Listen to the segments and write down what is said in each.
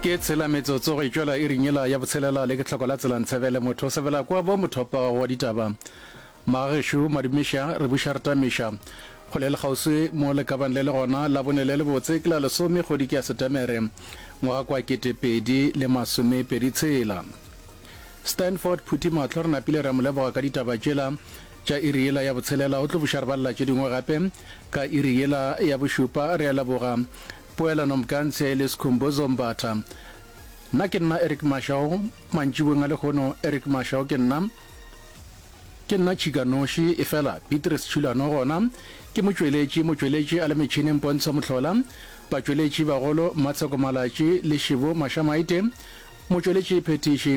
ke tshela metsotso go itšwela e rinyela ya botshelela le ke tlhoko la tsela ntshebele motho o sebela kwa bo mothopa wa ditaba magagešu madumiša re buša re tamiša go le lekgauswi mo le kabang le le gona la bone le le botse ke la lesome kgodi ke ya setemere ngwaga kwa ketepedi le masome pedi tshela stanford phuthi matlho re napile re mo leboga ka ditaba tšela Tša iri yela ya botshelela o tlo buša re balela tše dingwe gape. Ka iri yela ya bošupa re a leboga Poelano Mkantshe le Skhumbuzo Mbatha. Nna ke nna Eric Mashau, mantšibong a lekgono Eric Mashau ke nna. Ke nna Tšhika Noši, efela Beatrice Tšhulano gona ke motšweletši. Motšweletši a le metšhineng Pontsho Mohlola. Batšweletši bagolo Mmatsheko Malatši le Shivo Mashamaite. Motšweletši phethiši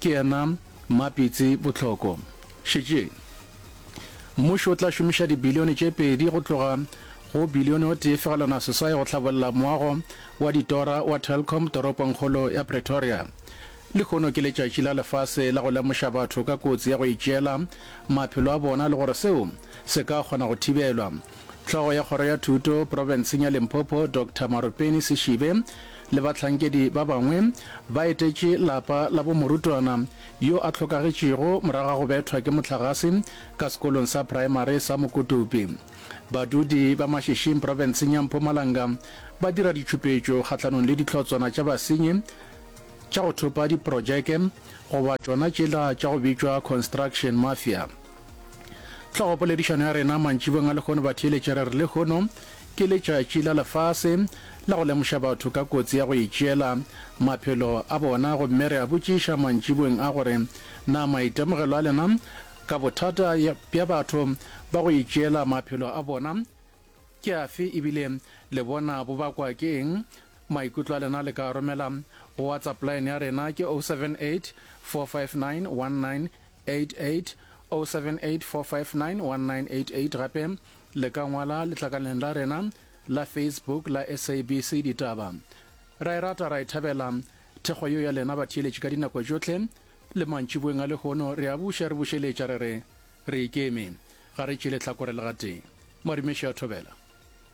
ke yena. Mapitsi, Bohloko, Šetšeng mmušo o tla šomiša dibilione tše pedi go tloga go bilione o tee fegelwana seswae go hlabolla moago wa ditora wa Telkom toropongkgolo ya Pretoria. Lehono ke letšatši la lefase la go lemoša batho ka kotsi ya go itšeela maphelo a bona le gore seo se ka kgona go thibelwa. Hlogo ya Kgoro ya Thuto profenseng ya Limpopo Doctor Marupeni Seshibe le bahlankedi ba bangwe ba etetše lapa la bo morutwana yo a hlokagetšego morago ga go bethwa ke mohlagase ka sekolong sa praemari sa Mokotopi. Badudi ba Mashishing profenseng ya Mpumalanga ba dira ditšhupetšo kgahlanong le dihlotswana tša basenyi tša go thopa diprojeke goba tšona tšela tša go bitšwa construction mafia. Tlhogopoledišano ya rena mantšibong a lehono batheeletše re re lehono ke letšatši la lefase la go lemoša batho ka kotsi ya go itšeela maphelo a bona gomme re a botšiša mantšibong a gore na maitemogelo a lena ka bothata bja batho ba go itšeela maphelo a bona ke afe ebile le bona bo bakwa ke eng maikutlo a lena le ka romela go whatsapp line ya rena ke 078 459 19 88-078-459-1988 Gape le ka ngwala letlakaleng la rena la Facebook la SABC Ditaba. Ra e rata ra e thabela thekgo yo ya lena batheeletši ka dinako tšohle le mantšiboeng a lehono re a buša re bušeletša re re re ikeme ga re tšele tlhakore le gatee. Marumeša Thobela.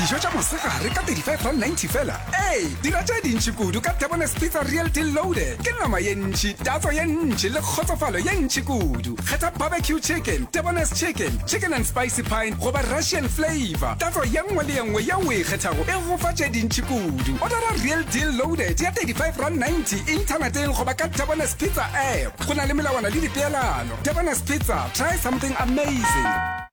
dijo tša mosegare ka 35.90 fela ee dira tše dintši kudu ka debones pizza real deal loaded ke nama ye ntši tatso ye ntši le kgotsofalo ye ntši kudu kgetha barbecue chicken debones chicken chicken and spicy pine goba russian flavor tatso ye nngwe le ye nngwe ye o e kgethago e gofa tše dintši kudu odara real deal loaded ya 35 rand 90 inthaneteng goba ka debones pizza app go na le melawana le dipeelano debones pizza try something amazing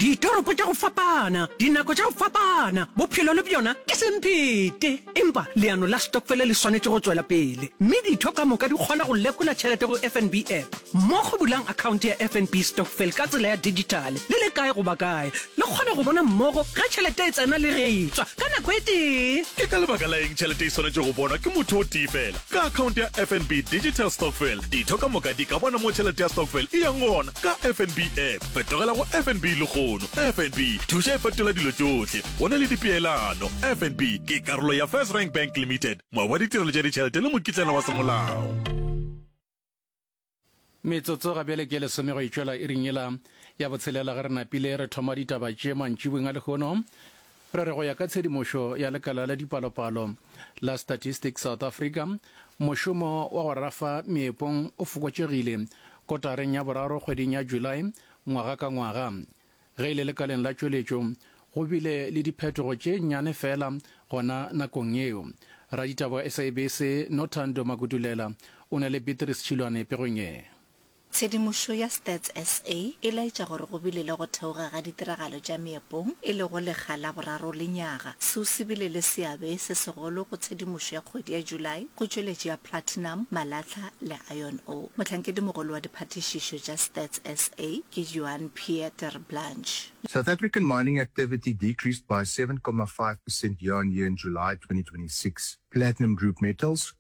Ditoropo tša go fapana, dinako tša go fapana, bophelo le bjona ke semphete. Empa leano la stokfele le swanetše go tšwela pele, mme ditho ka moka di kgona go lekola tšhelete go FNB App. Mo go bulang akhaonte ya FNB Stokvel ka tsela ya dijithale, le le kae goba kae, le kgona go bona mmogo ge tšhelete e tsena le ge e tšwa ka nako e tee. Ke ka lebaka la eng tšhelete e swanetše go bonwa ke motho o tee feela? Ka akhaonte ya FNB Digital Stokvel, ditho ka moka di ka bona mo tšhelete ya stokvel e yang gona ka FNB App. Fetogela go FNB legono. FNB, thuša e fetola dilo tšohle. Go na le dipeelano. FNB ke karolo ya First Rank Bank Limited, moabi wa ditirelo tša ditšhelete le mokitlana wa semolao. Metsotso ga bjale ke lesome go e tšwela iring yela ya botshelela ge re napile re thoma ditaba tše mantšibong a lehono Re re go ya ka tshedimošo ya lekala la dipalopalo la Statistics South Africa, mošomo wa go rafa meepong o fokotšegile kotareng ya boraro kgweding ya July ngwaga ka ngwaga. Ge e le lekaleng la tšweletšo, go bile le diphetogo tše nnyane feela gona nakong yeo. Raditaba wa SABC Nothando Makutulela o na le Beatrice Tšhilwane pegong ye. Tshedimošo ya Stats SA e laetša gore go bile le go theoga ga ditiragalo tša meepong e lego lekga la boraro lenyaga. Seo se bile le seabe se segolo go tshedimošo ya kgwedi ya July go tšweletši ya platinum, malatlha le iron ore. Mohlankedi-mogolo wa diphathišišo tša Stats SA ke Johan Pierre Terblanche. South African mining activity decreased by seven comma five percent year-on-year in July twenty twenty six. Platinum Group Metals,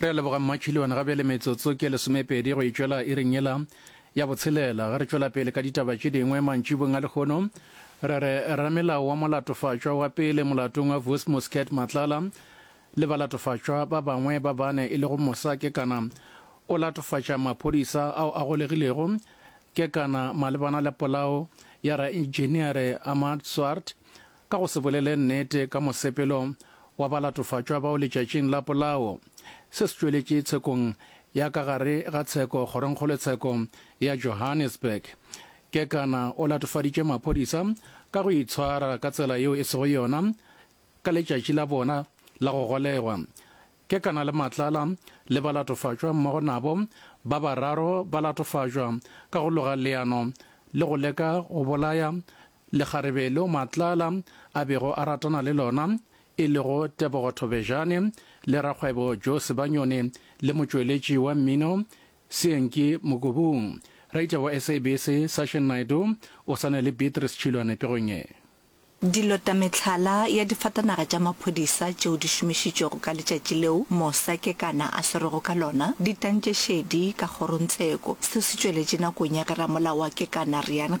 Re a leboga Mmatšhiliwana ga bjale metsotso ke lesomepedi go itšwela iring yela ya botshelela. Ge re tšwela pele ka ditaba tše dingwe mantšibong a lekgono, re re ramelao wa molatofatšwa wa pele molatong wa Vus Muscat Matlala le balatofatšwa ba bangwe ba bane e lego Mosa Kekana o latofatša maphodisa ao a golegilego Kekana malebana le polao ya raenjiniere Ahmad Swart Ka go se bolele nnete ka mosepelo wa balatofatšwa bao letšatšing la polao, se se tšweletše tshekong ya ka gare ga tsheko kgorongkgolotsheko ya Johannesburg. Kekana o latofaditše maphodisa ka go itshwara ka tsela yeo e sego yona ka letšatši la bona la go golegwa. Kekana le Matlala le balatofatšwa mmogo nabo ba bararo ba latofatšwa ka go loga leano le go leka go bolaya Lekgarebe leo Matlala a bego a ratana le lona, e lego Tebogo Thobejane, le rakgwebo Joe Sebanyone le motšweletši wa mmino Seenki Mokobung. Reitša wa SABC Sashin Naidoo o sane le Beatrice Tšhilwane pegong ye. Dilota Mehlala ya difatanaga tša maphodisa tšeo di šomišitšwego ka letšatši leo mosa Kekana a swerwego ka lona di tantše šedi ka kgorontseko. Seo se tšweletše nakong ya ge ramolao wa Kekana Riaan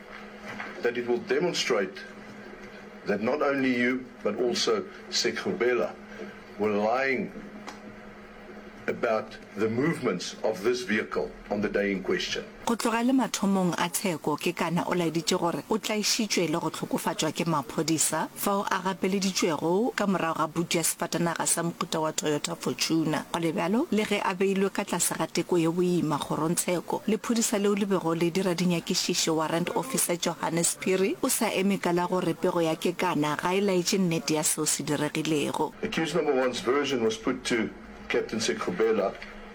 that it will demonstrate that not only you but also Sekgobela were lying about the movements of this vehicle on the day in question. Go tloga le mathomong a tsheko, Kekana o laeditše gore o tlaišitšwe le go hlokofatšwa ke maphodisa. fao a gapeleditšwego ka morago ga putu ya sefatanaga sa mohuta wa Toyota Fortuner. Go le bjalo, le ge a beilwe ka tlase ga teko ye boima, kgorongtsheko le phodisa leo le bego le dira dinyakišišo, Warrant Officer Johannes Phiri o sa eme ka la gore pego ya Kekana ga e laetše nnete ya seo se diregilego. Accused number one's version was put to Captain Sekhubela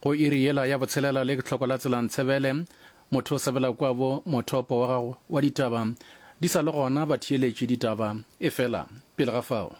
Go iri yela ya botshelela le tlhoko la tsela Ntsebele, motho o sebela kua bo mothopo wa gago wa ditaba di sa le gona ba theeletše ditaba efela pele ga fao.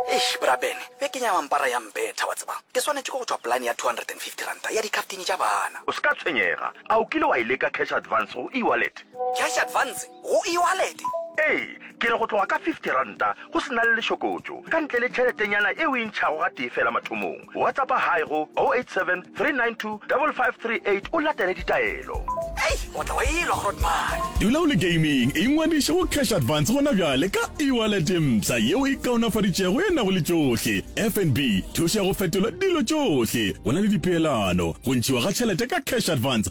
Eish bra Ben, be ke nyama mpara ya mbetha wa tseba. Ke swanetše ke go tšwa polane ya R250 ya dikartini tša bana. O se ka tshwenyega, a o kile wa e leka cash advance go e-wallet? Cash advance go e-wallet? Ee, ke re go tloga ka R50 go se na le lešokotšo, ka ntle le tšheletenyana e o e ntšhago gatee feela mathomong. Whatsappa Haai go 0873925538 o latele ditaelo. Hei! O tla wa elwa, Grootman! Dula o le gaming, ingwadiše go Cash Advance gona bjale ka e-wallet mpsha yeo e kaonafaditšwego e nago le tšohle, FNB, thušo ya go fetola dilo tšohle. Go na le dipeelano, go ntšhiwa ga tšhelete ka Cash Advance,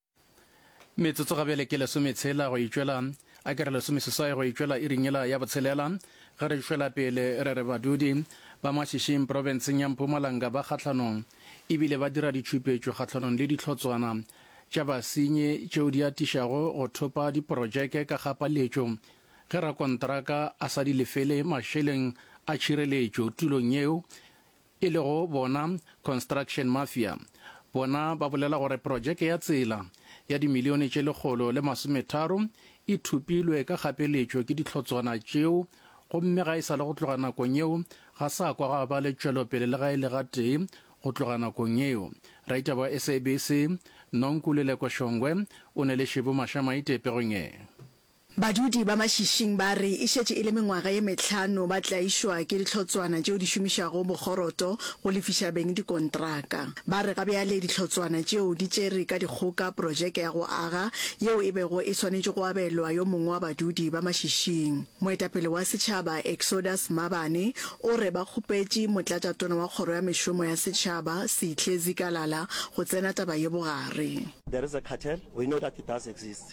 Metsotso ga bjale ke lesometshela go itšwela, a ke re lesomeseswai go itšwela iring yela ya botshelela, ge re šwela pele re re badudi ba Mashišing profenseng ya Mpumalanga ba kgahlanong e bile ba dira ditšhupetšo kgahlanong le dihlotswana tša basenyi tšeo di atišago go thopa diprotšeke ka kgapaletšo ge rakontraka a sa di lefele mašeleng a tšhireletšo tulong yeo e lego bona Construction Mafia, bona ba bolela gore projeke ya tsela ya dimilione tše lekgolo le masometharo e thupilwe ka kgapeletšo ke dihlotswana tšeo gomme ga e sa le go tloga nakong yeo ga sa kwa ga ba le tšwelopele le ga e le gatee go tloga nakong yeo. Raita ba SABC, Nonkululeko Shongwe o ne le Shibu Mashamaite pegong e. Badudi ba Mašišing ba re e šetše e le mengwaga ye mehlano ba tlaišwa ke dihlotswana tšeo di šomišago bokgoroto go lefiša beng dikontraka. Ba re ga bjale dihlotswana tšeo di tšere ka dikgoka projeke ya go aga yeo e bego e swanetše go abelwa yo mongwe wa badudi ba Mašišing. Moetapele wa setšhaba Exodus Mabane o re ba kgopetše motlatšatona wa kgoro ya mešomo ya setšhaba Seihle Zikalala go tsena taba ye bogare. There is a cartel, we know that it does exist.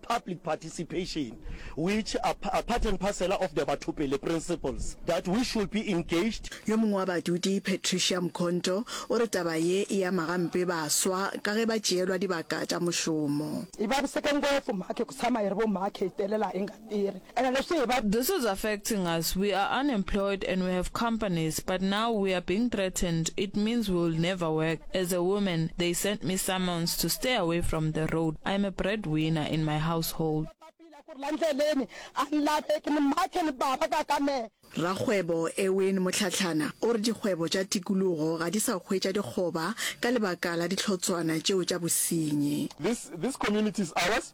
public participation, which are part and parcel of the Bathopele principles, that we should be engaged. Yo mongwe wa badudi, Patricia Mkhonto, o re taba ye e ama gampe baswa ka ge ba tšeelwa dibaka tša mošomo. Ibabuseke ngwefu make kutsama iri bo make itelela inga tiri And I say, but this is affecting us, we are unemployed and we have companies, but now we are being threatened, it means we will never work. As a woman, they sent me summons to stay away from the road. I am a breadwinner in my household. Rakgwebo Erwin Mohlahlana o re dikgwebo tša tikologo ga di sa hwetša dikgoba ka lebaka la dihlotshwana tšeo tša bosenyi. This, this community is ours.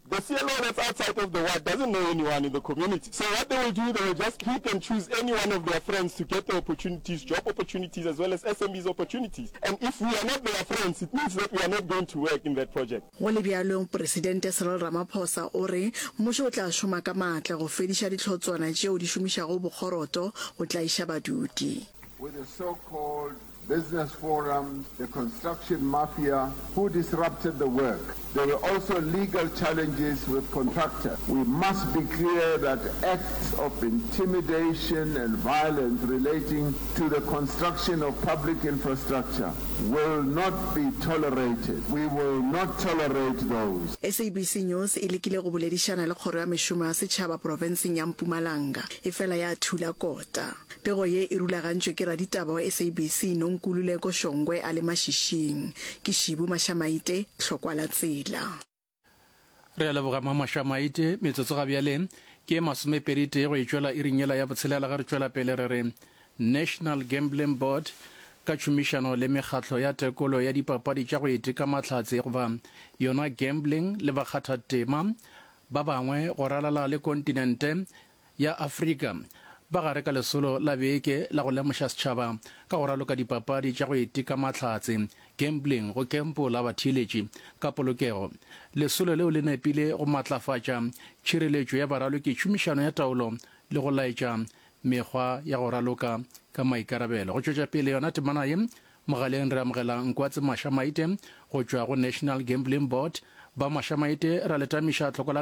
The CLO that's outside of the ward doesn't know anyone in the community so what they will do they will just pick and choose any one of their friends to get the opportunities, job opportunities as well as SMEs opportunities and if we are not their friends it means that we are not going to work in that project. Go le bjalo, Presidente Cyril Ramaphosa o re mmušo o tla šoma ka maatla go fediša dihlotswana tšeo di šomišago bokgoroto go tlaiša badudi. Business Forum, the construction mafia who disrupted the work. There were also legal challenges with contractors. We must be clear that acts of intimidation and violence relating to the construction of public infrastructure will not be tolerated. We will not tolerate those. SABC News e lekile go boledišana le Kgoro ya Mešomo ya Setšhaba profenseng ya Mpumalanga, efela ya thula kota. Pego ye e rulagantšwe ke raditaba wa SABC Nonkululeko Shongwe a le mašišing. Ke Shibu Mashamaite, hlokwa la tsela. Re a leboga Mma Mashamaite. Metsotso ga bjale ke e masomepedi tee go e tšwela iring yela ya botshelela ge re tšwela pele re re, National Gambling Board ka tšhomišano le mekgatlo ya tekolo ya dipapadi tša go iteka mahlatse goba yona gambling le bakgathatema ba bangwe go ralala le kontinente ya Afrika ba gare ka lesolo la beke la go lemoša setšhaba ka go raloka dipapadi tša go iteka mahlatse, gambling, go kempola batheeletši ka polokego. Lesolo leo le nepile go matlafatša tšhireletšo ya baraloki, tšhomišano ya taolo le go laetša mekgwa ya go raloka ka maikarabelo. Go tšwetša pele yona temana ye, mogaleng re amogela Nkwatse Masha Maite go tšwa go National Gambling Board. Ba Masha Maite, ra le tamiša tlhoko la.